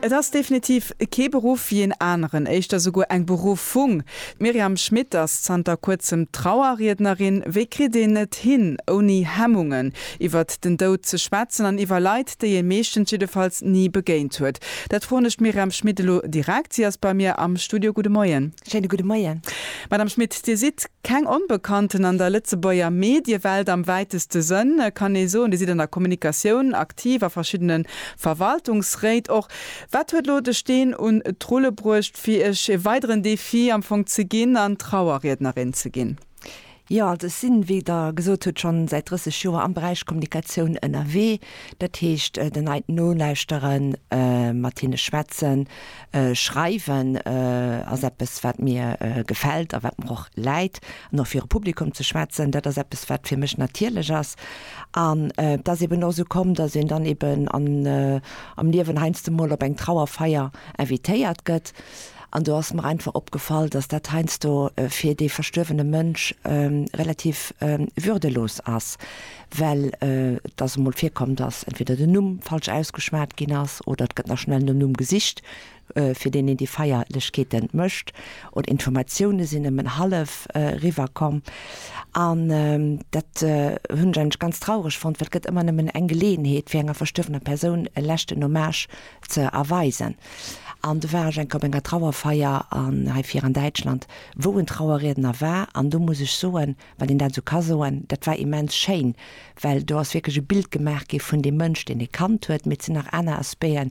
Et ass definitiv kee Beruff wéi een aneren, éischter souguer eng Beruffung. D'Myriam Schmit ass zanter kuerzem Trauerriednerin. Wéi kritt een et hin, ouni Hemmungen iwwert den Doud ze schwätzen an iwwer Leit, déi ee meeschtens jiddefalls ni begéint huet? Dat froen ech d'Myriam Schmit elo direkt. Si ass bei mir am Studio. Gudde Moien. Schéine gudde Moien. Madame Schmit, Dir sidd keng Onbekannten an der Lëtzebuerger Mediewelt am wäiteste Sënn, kann ee soen. Dir sidd an der Kommunikatioun ak. aktiv a verschiddene Verwaltungsréit och. Wat huet elo de Steen un d'Rulle bruecht, fir Iech e weideren Defi am Fong ze ginn an Trauerriednerin ze ginn? Jo, also ech sinn, wéi Der gesot hutt, schonn säit 30 Joer am Beräich Kommunikatioun ënnerwee. Dat heescht, den Leit nolauschteren, mat hinne schwätzen, Schreiwen ass eppes, wat mir gefält a wat mer och läit. An och viru Publikum ze schwätzen, dat ass eppes, wat fir mech natierlech ass. An et ass eben och esou komm, datt een dann eben am Liewen heiansdo emol op eng Trauerfeier invitéiert gëtt. An do ass mer einfach opgefall, datt dat heiansdo fir dee verstuerwene Mënsch relativ würdelos ass. well et ass emol virkomm, dass entweder den Numm falsch ausgeschwat ginn ass oder et gëtt nach schnell nom Numm gesicht, fir deen een déi Feierlechkeete mécht, oder Informatioune sinn nëmmen hallef eriwwer komm. An dat hunn ech eigentlech ganz traureg fonnt, well et gëtt ëmmer nëmmen eng Geleeënheet, fir enger verstuerwener Persoun e leschten Hommage ze erweisen. An do war ech eng Kéier op enger Trauerfeier an, heifir an Däitschland, wou en Trauerriedner war, an do muss ech soen, Well een dat esou ka soen, dat war immens schéin, well do ass wierklech e Bild gemaach gi vun deem Mënsch, deen ee kannt huet. Mee et sinn nach aner Aspecten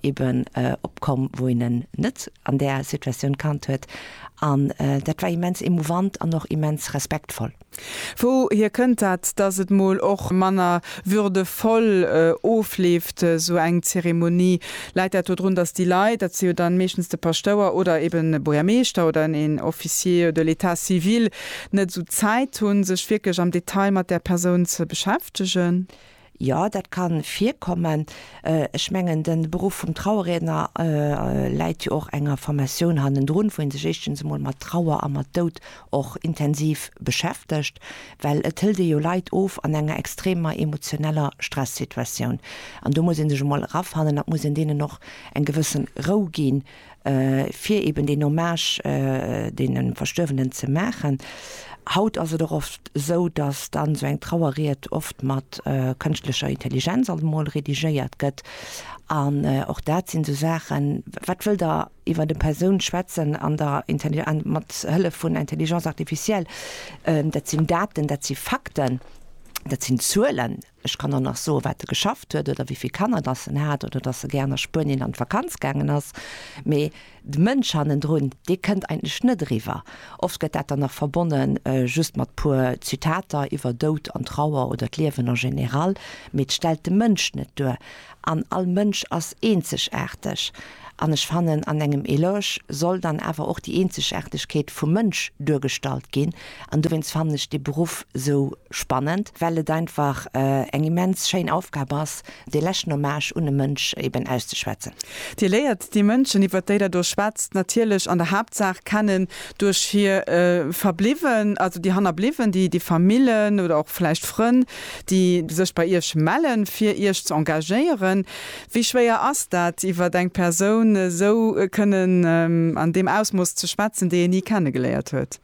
eben opkomm, wou een en net an där Situatioun kannt huet. An dat war immens emouvant an och immens respektvoll. Wouhier kënnt dat, datt et mol och manner würdevoll ofleeft, esou eng Zeremonie. Läit dat do drun, datt déi Leit, dat si jo dann meeschtens de Paschtouer oder eben e Buergermeeschter oder een Officier de l'État civil, net esou Zäit hunn, sech wierklech am Detail mat där Persoun ze beschäftegen? Jo, dat ka virkommen. Ech mengen, de Beruff vum Trauerriedner läit jo och enger Formatioun hannendrun, wou ee sech éischtens emol mat Trauer a mat Doud och intensiv beschäftegt, well et hëlt ee jo Leit of an enger extremer emotioneller Stressituatioun. An do muss ee sech emol erafannen a muss een deenen och eng gewësse Rou ginn, fir eben deen Hommage deene Verstuerwenen ze maachen. Haut ass et och oft esou, datt dann esou eng Trauerried oft mat kënschtlecher Intelligenz alt emol redigéiert gëtt. An och dat sinn esou Saachen, wat wëllt Der? iwwert eng Persoun schwätzen an der mat Hëllef vun Intelligence artificielle, dat sinn Daten, dat si Fakten, dat sinn Zuelen. Ech kann och nach soen, wat e geschafft huet oder wéi vill Kanner datt en hat oder datt e gär a Spuenien an d'Vakanz gaangen ass. Mee de Mënsch hannendrun, dee kënnt eigentlech net eriwwer. Oft gëtt dat dann nach verbonne just mat puer Zitater iwwer Doud an Trauer oder d'Liewen en général, mee et stellt de Mënsch net duer. An all Mënsch ass eenzegaarteg. An ech fannen, an engem Eloge soll dann awer och déi Eenzegaartegkeet vum Mënsch duergestallt ginn. An dowéinst fannen ech dee Beruff esou spannend, well et einfach eng immens schéin Aufgab ass, dee leschten Hommage un e Mënsch eben auszeschwätzen. Dir léiert déi Mënschen, iwwert déi Der do schwätzt, natierlech an der Haaptsaach kennen duerch hir Verbliwwen, also déi Hannerbliwwen, déi Famillen oder och vläicht Frënn. déi sech bei Iech mellen, fir Iech ze engagéieren. Wéi schwéier ass dat, iwwer eng Persoun esou kënnen an deem Ausmooss ze schwätzen, déi ee ni kenne geléiert huet?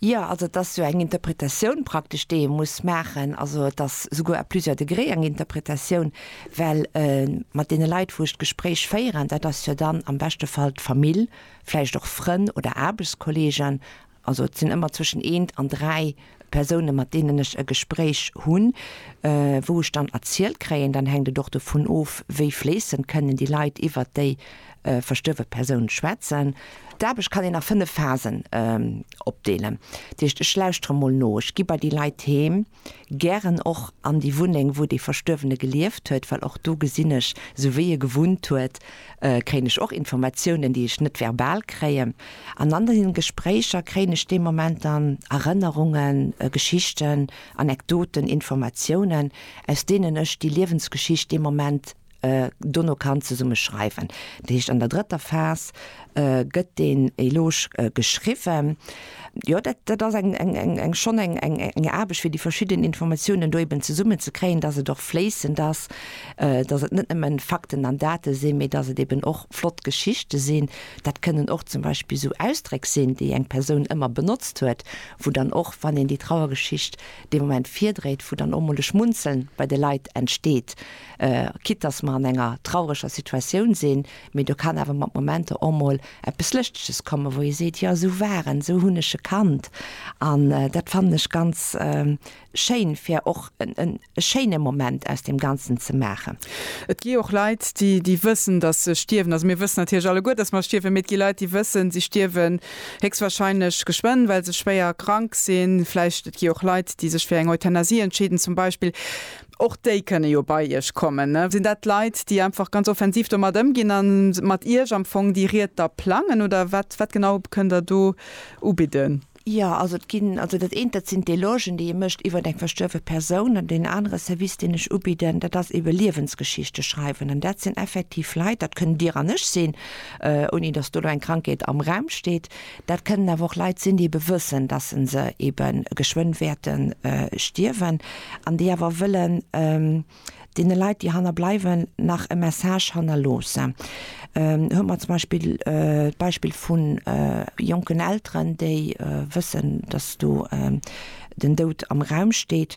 Jo, also et ass jo eng Interpretatioun praktesch, déi ee muss maachen. Also et ass souguer à plusieurs degrés eng Interpretatioun, well mat deene Leit, wou ech d'Gespréich féieren, dat ass jo dann am beschte Fall d'Famill, vläicht och Frënn oder Aarbechtskolleegen, Also et sinn ëmmer zwëschen eent an dräi Persounen, mat deenen ech e Gespréich hunn, wou ech dann erzielt kréien, dann hänkt et och dovun of, wéi fléissend kënnen déi Leit iwwert déi verstuerwe Persoun schwätzen. D'Aarbecht kann een a fënnef Phasen opdeelen. Dat heescht, ech lauschtere mol no, ech gi bei déi Leit heem, Gären och an déi Wunneng, wou dee Verstuerwene gelieft huet, well och do gesinn ech, esou wéi e gewunnt huet, kréien ech och Informatiounen, déi ech net verbal kréien. An an deenen Gespréicher kréien ech dee Moment dann Erënnerungen, Geschichten, Anekdoten, Informatiounen, aus deenen ech déi Liewensgeschicht dee Moment, dono kann zesumme schreiwen. Dat heescht an der drëtter Phas gëtt deen Eloge geschriwwen. Jo dat dat ass eng eng eng eng schonn eng eng eng Aarbecht fir déi verschidden Informatiounen do eben zesummen ze kréien, datt et och fléissend ass, datt et net nëmme Fakten an Date sinn, mee datt et eben och flott Geschichte sinn. Dat kënnen och zum Beispill esou Ausdréck sinn, déi eng Persoun ëmmer benotzt huet, wou dann och wann een déi Trauergeschicht dee Moment virdréit, wou dann och mol e Schmunzeln bei de Leit entsteet. Quitte dass mer an enger traureger Situatioun sinn, mee do kann awer mat Momenter och mol eppes Lëschteges kommen, wou ee seet, jo esou war en, esou hunn ech e kannt. An dat fannen ech ganz schéin, fir och e schéine Moment aus deem Ganzen ze maachen. Et gi och Leit, déi wëssen, dass se stierwen. Also mir wëssen natierlech alleguer, dass mer stierwen, mee et gi Leit, déi wëssen, si stierwen héchstwahrscheinlech geschwënn, well se schwéier krank sinn. Vläicht et gi och Leit, déi sech fir eng Euthanasie entscheeden zum Beispill. Och déi kënne jo bei Iech kommen. Sinn dat Leit, déi einfach ganz offensiv domat ëmginn a mat Iech am Fong déi Ried da plangen, oder wat, wat genau kënnt Der do ubidden? Jo, also et ginn, also dat eent, dat sinn d'Elogen, déi ee mécht iwwer eng verstuerwe Persoun. An deen anere Service, deen ech ubidden, dat ass ebe Liewensgeschichte schreiwen. An dat sinn effektiv Leit, dat kënnt Dir an ech sinn, ouni datt do elo eng Krankheet am Raum steet, Dat kënnen awer och Leit sinn, déi ebe wëssen, dass se se ebe geschwënn wäerte stierwen an déi awer wëllen deene Leit, déi hanner bleiwen, nach e Message hannerloossen. Hu mer zum Beispill d'Beispill vu jonken Elteren, déi wëssen, dass do den Doud am Raum steet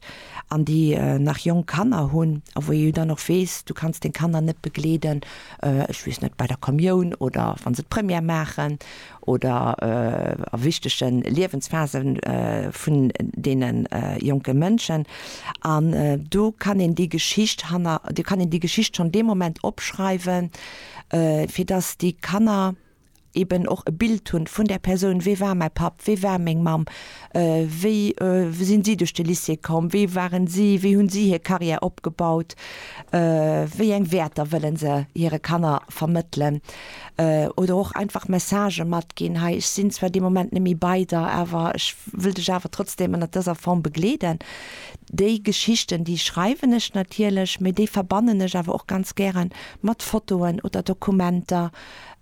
an déi nach jonk Kanner hunn a wou ee jo dann och weess, du kanns deng Kanner net begleeden, ech weess net, bei der Kommioun oder wa se d'Première maachen. oder a wichtege Liewensphase vun deene jonke Mënschen. An do kann een déi Geschicht hanner, do kann een déi Geschicht schonn dee Moment opschreiwen, fir datt déi Kanner eeben och e Bild hunn vun där Persoun, Wie war mäi Papp? Wie war meng Mamm? Wéi sinn si duerch de Lycée komm? Wie waren si? Wéi hunn si hir Carrière opgebaut? Wéi eng Wäerter wëllen se hire Kanner vermëttelen? Oder och einfach Messagë matginn, hei ech sinn zwar dee Moment net méi bei der, awer ech wëll dech awer trotzdem ënnert dëser Form begleeden. Déi Geschichten, déi schreiwen ech natierlech, mee déi verbannen ech awer och ganz gäre mat Fotoen oder Dokumenter,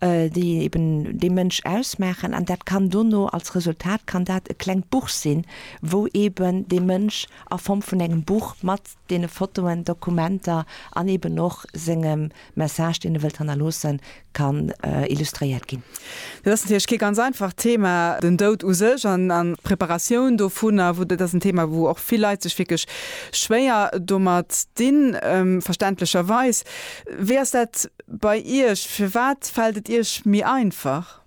déi eben dee Mënsch ausmaachen. An dat kann dono, als Resultat kann dat e klengt Buch sinn, wou eben dee Mënsch a Form vun engem Buch mat deene Fotoen, Dokumenter an eben och sengem Message, deen e wëllt hannerloossen, kann illustréiert ginn. Dat ass natierlech kee ganz einfacht Thema, den Doud u sech an d'Preparatioun dovunner, wou dat ass en Thema, wou och vill Leit sech wierklech schwéier domat dinn, verständlecherweis. Wéi ass dat bei Iech? Firwat fält et Iech méi einfach?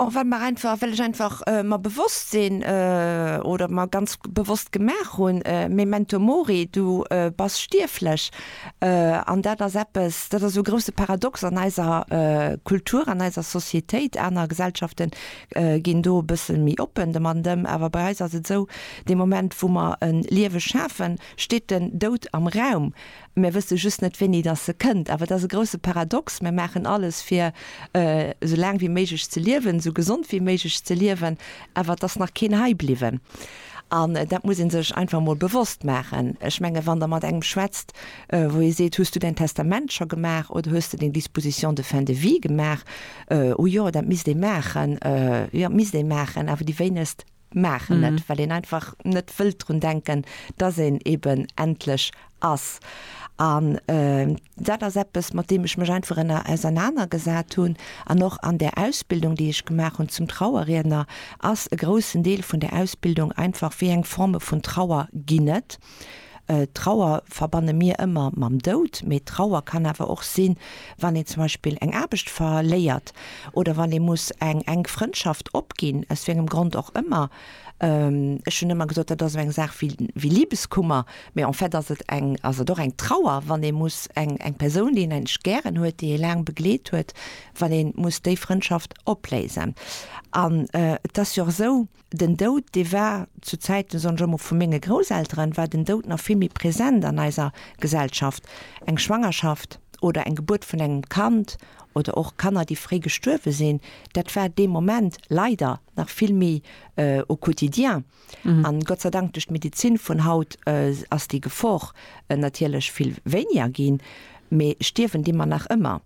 Och well mer einfach, well ech einfach mer bewosst sinn oder mer ganz bewosst gemaach hunn, Memento mori, du bass stierflech. An dat ass eppes, dat ass e grouse Paradox an eiser Kultur, an eiser Societéit. Aner Gesellschafte ginn do e bësse méi oppen domatten, awer bei eis ass et esou, dee Moment, wou mer e Liewe schafen, steet den Doud am Raum. Mär wësse just net, wéini dass se kënnt. Awer et ass e grousse Paradox, Mär maachen alles, fir esou laang wéi méiglech ze liewen, esou gesond wéi méiglech ze liewen, awer et ass nach keen hei bliwwen. An dat muss ee sech einfach emol bewosst maachen. Ech menge wann Der mat engem schwätzt, wou ee seet, Hues du Däin Testament scho gemaach oder hues de deng Disposition de fin de vie gemaach? O jo, dat misst ee maachen. Jo, misst ee maachen, awer déi wéinegst. maachen net, mhm. well een einfach net wëllt drun denken, dass een eben endlech ass. An äh, dat ass eppes, mat dem ech mech einfach ënner auseinaner gesat hunn. An och an der Ausbildung, déi ech gemaach hunn zum Trauerriedner, ass e groussen Deel vun der Ausbildung einfach, wéi eng Forme vun Trauer ginn et. Trauer verbanne mir ëmmer mam Doud, mee Trauer kann awer och sinn, wann een zum Beispill eng Aarbecht verléiert oder wann ee muss eng enk Frëndschaft opginn, aus wéi engem Grond och ëmmer. Ech hunn ëmmer gesot, dat ass esou eng Saach wéi Liebeskummer, mee en fait ass et eng, ass et och eng Trauer, wann ee muss eng eng Persoun, déi een eigentlech gären huet, déi ee laang begleet huet, wann ee muss déi Frëndschaft opléisen. An et ass jo och esou. den Doud, dee war zu Zäiten, soen ech ëmmer, vu menge Grousselteren, war den Doud nach vill méi present an eiser Gesellschaft. Eng Schwangerschaft oder eng Gebuert vun engem Kand oder och Kanner, déi fréi gestuerwe sinn, dat war dee Moment leider nach vill méi au quotidien. An Gott sei Dank, duerch d'Medizin vun haut ass déi Gefor natierlech vill wéiniger ginn. Mee stierwen di mer nach ëmmer?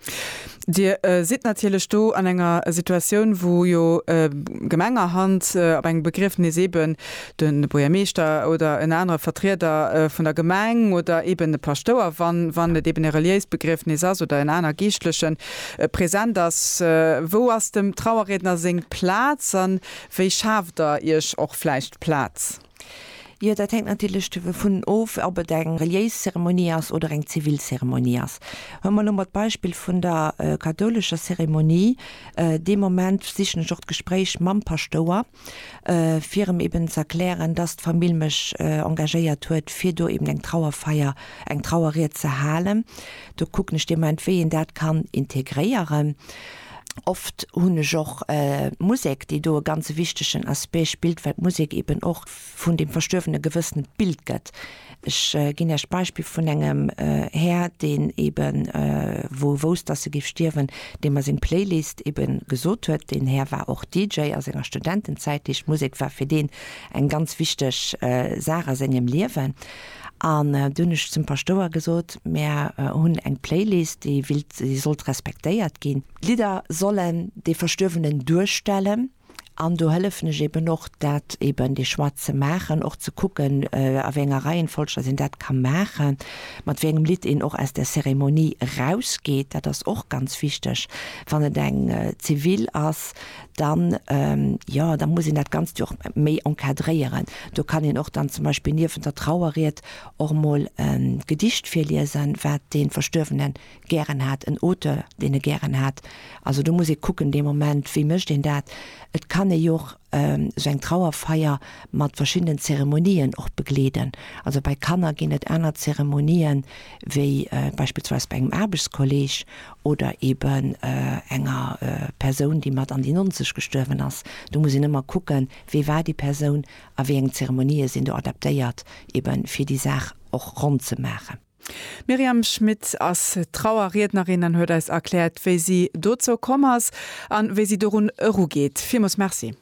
Dir sidd natierlech do an enger Situatioun, wou jo gemengerhand op engem Begriefnis eeben de Buergermeeschter oder en anere Vertrieder vun der Gemeng oder eeben e Paschtouer, wann et eeben e reliéist Begriefnis ass, oder en aner Geeschtlechen, present ass. Wou ass dem Trauerriedner seng Plaz? A wéi schaaft Der Iech och vläicht Plaz? Jo, dat hänkt natierlech dovun of, ob et eng reliéis Zeremonie ass oder eng zivil Zeremonie ass. Wa mer elo mer d'Beispill vun der kathoulescher Zeremonie, dee Moment sichen ech och d'Gespréich mam Paschtouer, fir em eben ze erklären, dass d'Famill mech engagéiert huet, fir do eben eng Trauerfeier, eng Trauerried ze halen. Do kucken ech dee Moment, wéi een dat kann integréieren. Oft hunn ech och d'Musek, déi do e ganze wichtegen Aspect spillt, well d'Musek eben och vun deem Verstuerwene e gewëssent Bild gëtt. Ech ginn Iech d'Beispill vun engem Här, deen eben, wou e wousst, dass e géif stierwen, deem mer seng Playlist eben gesot huet. Deen Här war och DJ a senger Studentenzäit, heescht d'Musek war fir deen eng ganz wichteg Saach a sengem Liewen. An du hunn ech zum Paschtouer gesot, Mär hunn eng Playlist, déi wéilt, déi sollt respektéiert ginn. D'Lidder sollen dee Verstuerwenen duerstellen an do hëllefen ech eben och, dat eben dee Choix ze maachen, och ze kucken, a wéi enger Reihenfolg dass een dat ka maachen, mat wéi engem Lidd een och aus der Cérémonie erausgeet. Dat ass och ganz wichteg, wann et eng zivil ass, dann, jo, da muss een dat Ganzt jo och méi encadréieren. Do kann een och dann zum Beispill niewent der Trauerried och emol e Gedicht virliesen, wat dee Verstuerwene gären hat, en Auteur, deen e gären hat. Also do muss ee kucken dee Moment, wéi mécht een dat. Et kann ee jo och esou eng Trauerfeier mat verschiddenen Zeremonien och begleeden. Also bei Kanner ginn et aner Zeremonien wéi beispillsweis bei engem Aarbechtskolleeg oder eben enger Persoun, déi mat an déi Nonzeg gestuerwen ass, do muss een ëmmer kucken, wee war déi Persoun a wéi eng Zeremonië sinn do adaptéiert, eben fir déi Saach och ronn ze maachen. D'Myriam Schmit ass Trauerriednerin an huet eis erkläert, wéi si dozou komm ass a wéi si dorun erugeet. Villmools Merci.